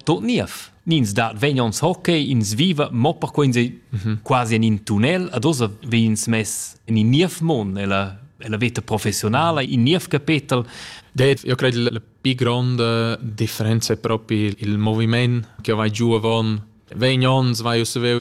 Tot niev. Nins dat vegn ons hockey, ins viva mo perquei ins ei quasi en in tunnel, ad ossa vegn ins mess en in niev mond, ella la veta professionala, in niev capetel. Det, io credo la più grande differenza è proprio il movimento che vai giù avon. Vegn ons, vai us veu.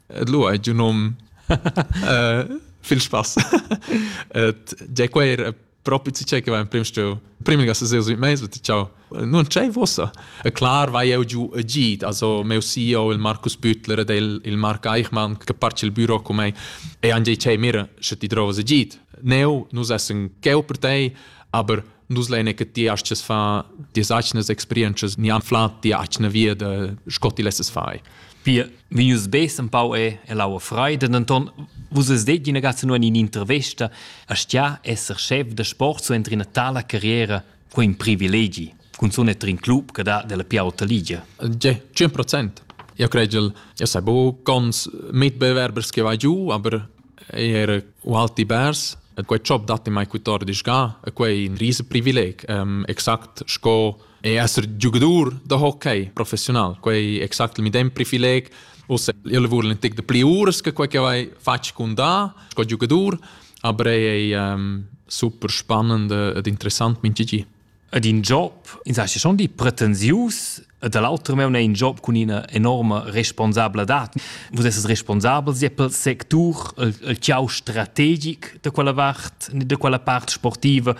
Et lu ei giu num uh, viel spass. Et ge quer propi ti che va in prim stu prim ga se sui meis ti ciao non c'è vossa e clar vai eu giu e git also meu CEO il Markus Büttler del il Mark Eichmann che parte il büro con me e anche c'è mir se ti trova se git neu nus essen cheu per te aber nus lene che ti hast es fa die sachnes experiences ni am flat die achne wir de scotti lesses fai Pir vegnius bes empau è ell'aua freida, denton vus es detg ina gazza nuan in intervesta, aschia esser chef da sport so entri ina tala carriera quei in privilegi, cunzun entri in club che dà della più alta ligia. 100%. Io credel, io sai bu, cons mit bewerbers che va giù, aber er u alti bers, quei job datti mai cutor disga, quei in rise privileg, um, exact sco E esser giugadur da hockey professiunal, quei exact il medem privileg. Ussa, io vul in tic de pli uras che quei che vai fatg con da, sco giugadur, aber ei ei um, super spannend ed interessant min gigi. Ed in job, in sa schon di pretensius, e dall'altro meun è in job con ina enorme responsabladad. Vus esses responsabel sia pel sectur, il, il ciao strategic de quella vart, de quella part sportiva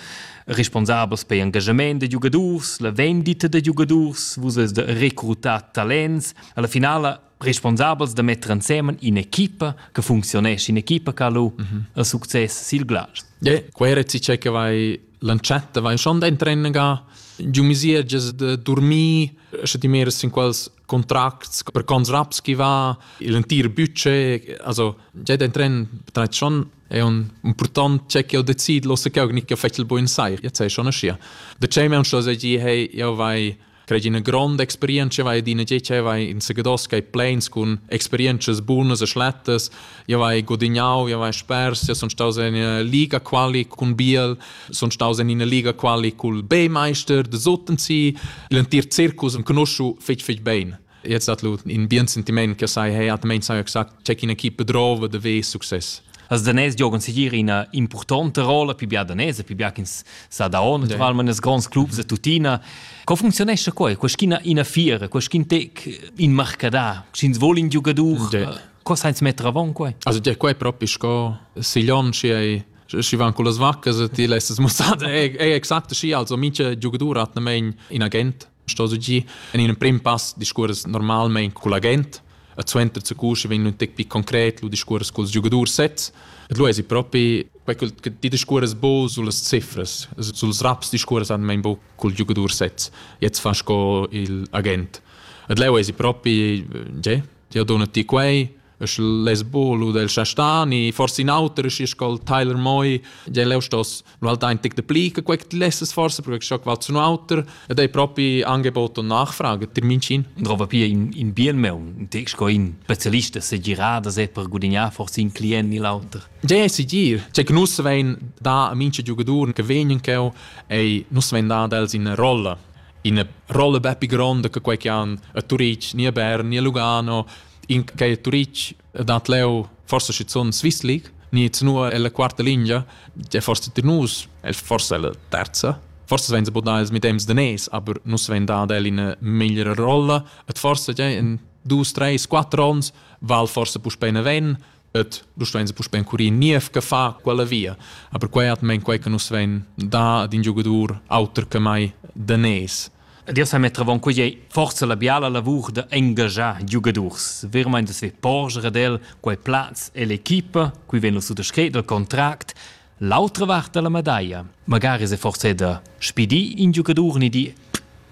responsabels per engagement da giugadurs, la vendita da giugadurs, vus es da recrutar talents, alla finala responsabels da metter insemen in'equipa che funzionesce, in'equipa che ha lu mm -hmm. il succes sil Glas. Yeah, quei rezi che vai lanciata vai schon da trennen ga giu misierges de dormir sche ti meres in quals contracts per cons raps chi va il entir budget also già den tren betreit schon è un important c'è che ho decid lo se che gnit fettel buin sai jetzt sei schon schia de chei men schon se gi hey io vai crei una grande experienza vai di ne ge vai in segados kai planes con experiences buonas e schlettes io vai gudignau, io vai spers, io sun staus in Liga quali cun Biel, sun staus in Liga quali cul B-Meister de Sotensi, l'entir circus am conosciu fetg fetg bein. Jetzt hat lu in bien sentiment che sai, hey, hat mein sai gesagt, check in equipe drove de ve success. Als danès giogan segir ina impurtonta rolla pi bia danese, pi bia ch'ins sa da on, naturalment yeah. nes grands clubs e tuttina. Co funzionesce quei? Quest'ina ina fiera, quest'in tec in marcadà, sch'ins vogl in giugadur? Yeah. Co sainz metter avon quei? Also dir quei propi sco siglion schi ei schi van con las vaccas e ti lässt es mussada è è exakt schi also mincha giugadur hat nemein in agent sto su gi in in prim pass discurs normalmein col agent a zuenter zu cusche wenn un tec pi concret lu discurs col giugadur sets et lu es propi quei che ti discurs bo sulle cifres suls raps discurs han mein bo col giugadur sets jetzt fa sco il agent et leu es propi ge Tia donna ti quei? E sche les bolo del Chastani, forse in auter, schi scol Tyler Moi, je leu stos nu halt ein tic de pli che quei ti lesses forse, perché scho qual zu un auter, ed ei propi Angebot und Nachfrage, dir mincin. Und rova pia in, in bien meun, in tex co in specialista se girada se per gudignare forse in client ni l'auter. Je è sicir, cioè che nus vein da a mince giocatori che vegnan cheu, ei nus vein da dels in rolla. ina rolla bepi gronda che quei che han a Turitg, ni a Bern, ni a Lugano, in che a Turitg dat leu forse schizun Swiss League, ni zunua ella quarta linea, che forse tir nus, el forse ella terza, Forse vein se bodà ils medems de nes, aber nus vein dad el in meglra rolla. Et forse, ja, in dus, treis, quattro ons, val forse puspei ne ven, et du stein puspei encurir niev che fa quella via a per quei atmen quei che nus vein da ad in giugadur auter che mai danes Dir sa mettravon quei ei forza la biala lavur da engagiar giugadurs. Vermeint es ve porger ad el quei plaz e l'equipa, qui vegn lo suttascret dal contract, L'autra vart da la medaglia. Magari se forse da spidi in giocador ni di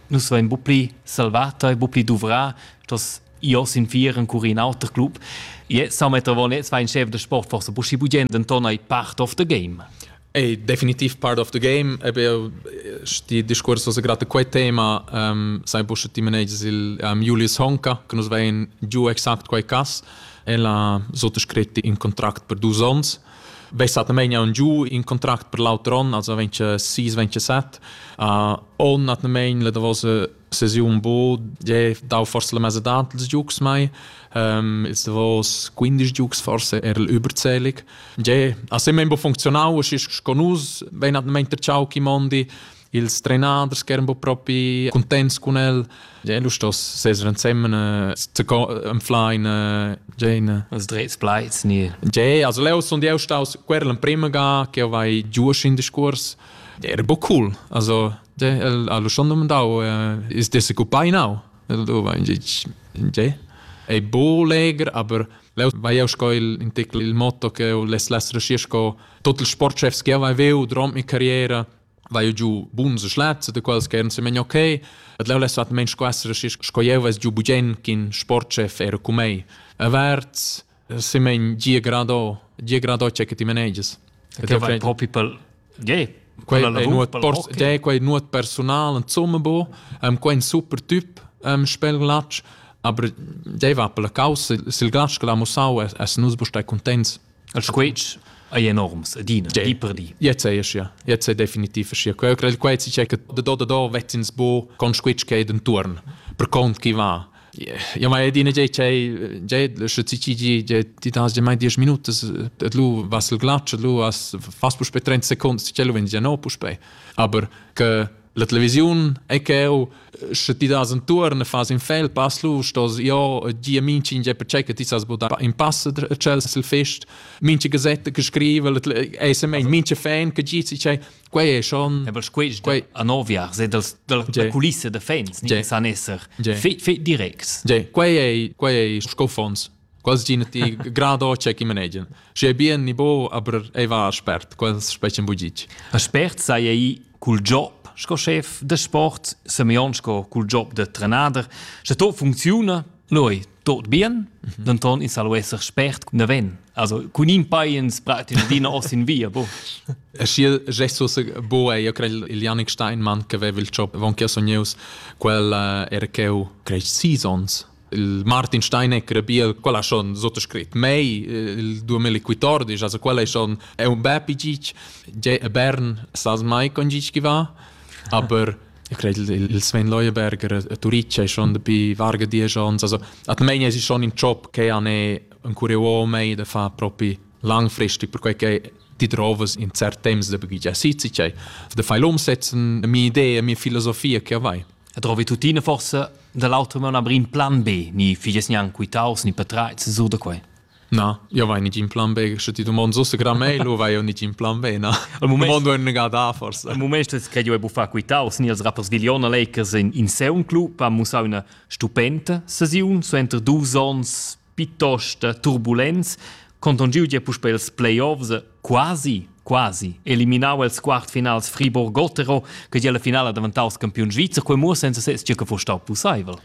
nus vein bu pli salvata e bu pli duvrà, dass io sin vieren cur in auter club. Je sa metter von jetzt ein Chef der Sport forse bu schi bugend den ton ei part of the game. È definitiv part of the game. Eben, sti discurs was gerade quei tema um, sai pushe ti managers il um, Julius Honka che nos vein giù exakt quei cas e la sotto scritti in contract per dus ons Be stattamein aun giu in contract per l'auter on, also 26 27. Uh, on atnamein la davosa sesiun bo je dau forse la mesa dat ils giugs mai ähm ist davos 15 giugs forse er überzählig je a se membo funkzionau es sco nus wenn at ment der ciao chi mondi ils trenaders che eran un po propi contents con el. Ja, lu stos seser ensemen eh, zu enfla in eh, Jane. Als dreits pleits nie. Ja, also leo son die staus querl in prima ga che vai giusch in discurs. Ja, era bo cool. Also ja, el ha lu schon domandau eh, is der se cupai nau. El do va in ja. È bo leger, aber Leu vai eu sco il in tecl il motto che eu les les resci sco tot il sportchefs che vai veu durant mi carriera vai giu buns schlaz de quels che se men okay et leu les vat mensch quassere sco jeu ves giu bugen kin sportchef era cu mei averts se men gie grado gie grado che ti manages che vai propi pel ge quella è nuot pors ge quei nuot personal en zumme bo am quein super typ am spel glatsch aber dei va per la causa sil glatsch che la musau es nus bo stai contents Il squetsch ei enorms ed ina di per di. Jetzt è ja. Jetzt è definitiv ja. Quel crei quei si che da do da do vezzins bu con squetsch che denturn per cont chi va. Ja ma edina je che je sche ci ci je ti das je mai 10 minute et lu was il glatsch lu as fas pu spe 30 seconden ci lo vin ja no pu spe aber che La televisiun è cheu, sche ti das entuorn e fas in fel pass lu, stos jo gia minchin ge percei che ti sas budar in pass tschel sil fest, minche gazette che scrive, è se mein minche fan che gi si cei, quei è schon. Ja, weil quei quei a noviar se dels della kulisse de fans, ni san esser fe direct. Quei è quei è scofons. quasi ch'ina ti grada o che chi manegian. Schi è bien ni bo, aber ei va spert, quels specen bugic. A spert sei ei cul job sco chef de sport, Semeion sco cul job de trenader, sche to funcziuna, noi tot bien, mhm. denton in salo esser spert cun ven. Also cun in paiens pratin dina os in via, bo. E schi gesto se bo e io credo il Janik Steinmann che aveva il job von che sogneus quel uh, era cheu cresc seasons Il Martin Steinegger bia, quella schon sottoscrit mei, il 2014, also quella è schon è un bel pigig, a Bern sas mai con gig chi va, aber ich glaube, il Sven Leuenberger a Turice è schon dabei varga dieci anni, also at meine es ist schon ein Job che han ein Kurios mei da fa proprio langfristig, perché che die Drovas in cert temps da bagiggia sitze, da fai umsetzen, mie idee, mie Philosophie che avai. E trovi tuttina forse dall'altro man abrir in plan B, ni figes gnanc quitaus ni petreits sur da quei. Na, io vai nicht in Plan B, che ti domand so gra mail o vai io nicht in Plan B, na. Al moment domando un gada forse. Al moment es che io e buffà quitaus ni als rappers Viliona Lakers in in Sound Club, ha mussau una stupenda sesiun, so enter dus ons piuttost turbulents, conton giu gia puspei els playoffs, quasi, quasi eliminau els quartfinals Friburg-Gotero, che gia la finala daventaus campiun svizzer, quei mo senza ses che fu stau pusseivel.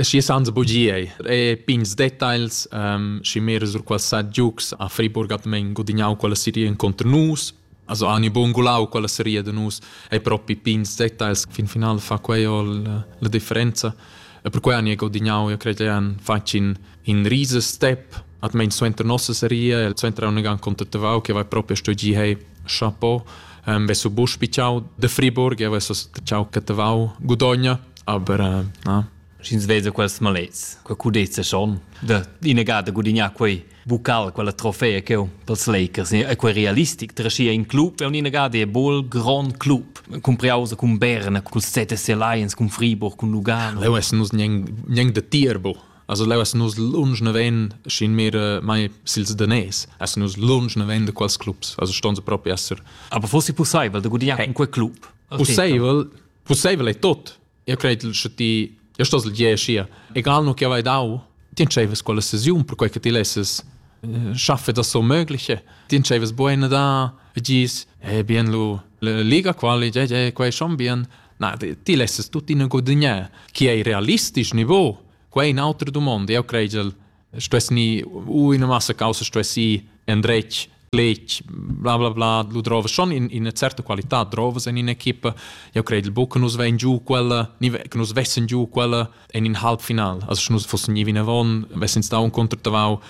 Schi sans bugiei e pigns details um, schi mir sur qual sa giucs a Friburg at men gudignau quella serie incontro nus Also ani bungulau quella seria de nus ei propi pigns details fin final fa quei ol la differenza e per quei ani è godignau io crede an faci in in riese step at mein suenter nossa seria el suenter un gan contatavau che vai proprio sto gi hei chapeau ähm vesu bus pichau de Friburg e vesu ciao catavau gudogna aber äh, na Sch'ins vesa quels malets, quei cudezza schon da inegada gudignar quei bucal, quella trofea che pels Lakers e quei realistic treschia in club e un inegada e bol grand club compriausa cun Berna, cun ZSC Lions, cun Friburg, cun Lugano. Leu essen nus gneng de Tierbo. Also leu essen nus lunsch ne ven schin mehr äh, mai sils danes. Essen nus lunsch ne ven de quals clubs. Also ston se proprio esser. Aber fosse possibel de gudignar cun quei club. Possibel, possibel è tot. Eu credel cha ti eu stos leger schia. Egal nu chi avai dau, ti entscheivas quella sesiun perquai che ti lesses eh, schaffe da so mögliche. Ti entscheivas buena da e gis, eh bien lu la liga quali, je je quai schon bien. Na, ti lesses tuttina gudagnare. Chi ei realistisch niveau? Quai è un'altra domanda. Eu credel stess ni u ina massa causa stessi endretg lech bla bla bla lu drova schon in in certa qualità drovas in in equipa ja credo il buca nus vein giu quella ni che nus vessen giu quella in in halbfinal also nus fossen nie vina von vessen stau un contratavau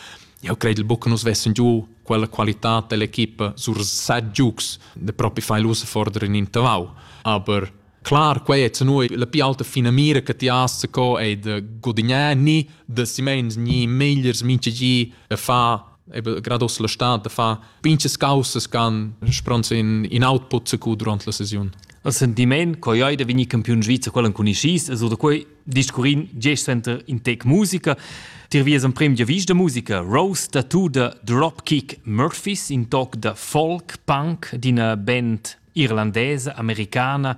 ja credo il buca nus vessen giu quella qualità dell'equipa sur set giugs de propi fai lusa fordere in in tavau aber Clar, quei è noi la più alta finamira che ti hast co è de gudagnare ni de simens ni megliers minchegi a fa grados la stat da fa pinches causas can spronts in in output se cu durant la sesiun. Al sentiment co joi da vini campiun svizzer quellen con ischis e so da quei discurin gest center in tec musica Tir vies emprim giavis da musica Rose da tu da Dropkick Murphys in toc da folk punk d'ina band irlandesa, americana,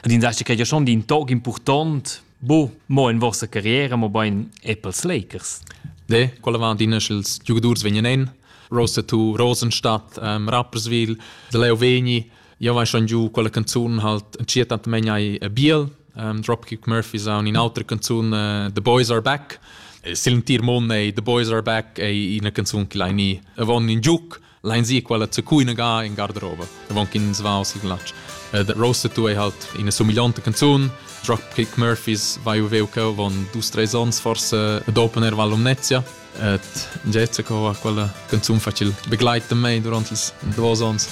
ed in dasche che ja schon din tog important, bo mo in vostra carriera, mo bein Apples Lakers. De, quella van din sch'ils giugadurs vegnan en, Rosa tu Rosenstadt, ähm, Rapperswil, de Leo Veni, io vai schon giù quella canzone halt entschietant megnai Biel, um, Dropkick Murphy sound in altra canzone uh, The Boys Are Back. Silentier Mon ei The Boys Are Back ei ina canzun che lai ni avon in giuc Lein zi quella zacuina ga in garderoba davon ch'ins va o sigl glatsch. Uh, that roaster tu ei halt ina somigliante canzun. Dropkick Murphys vai u veu cheu von dus tre sons forse ad opener Val Lumnezia. Et Jessica ha quella canzun facil begleiten mei durant ils duos ons.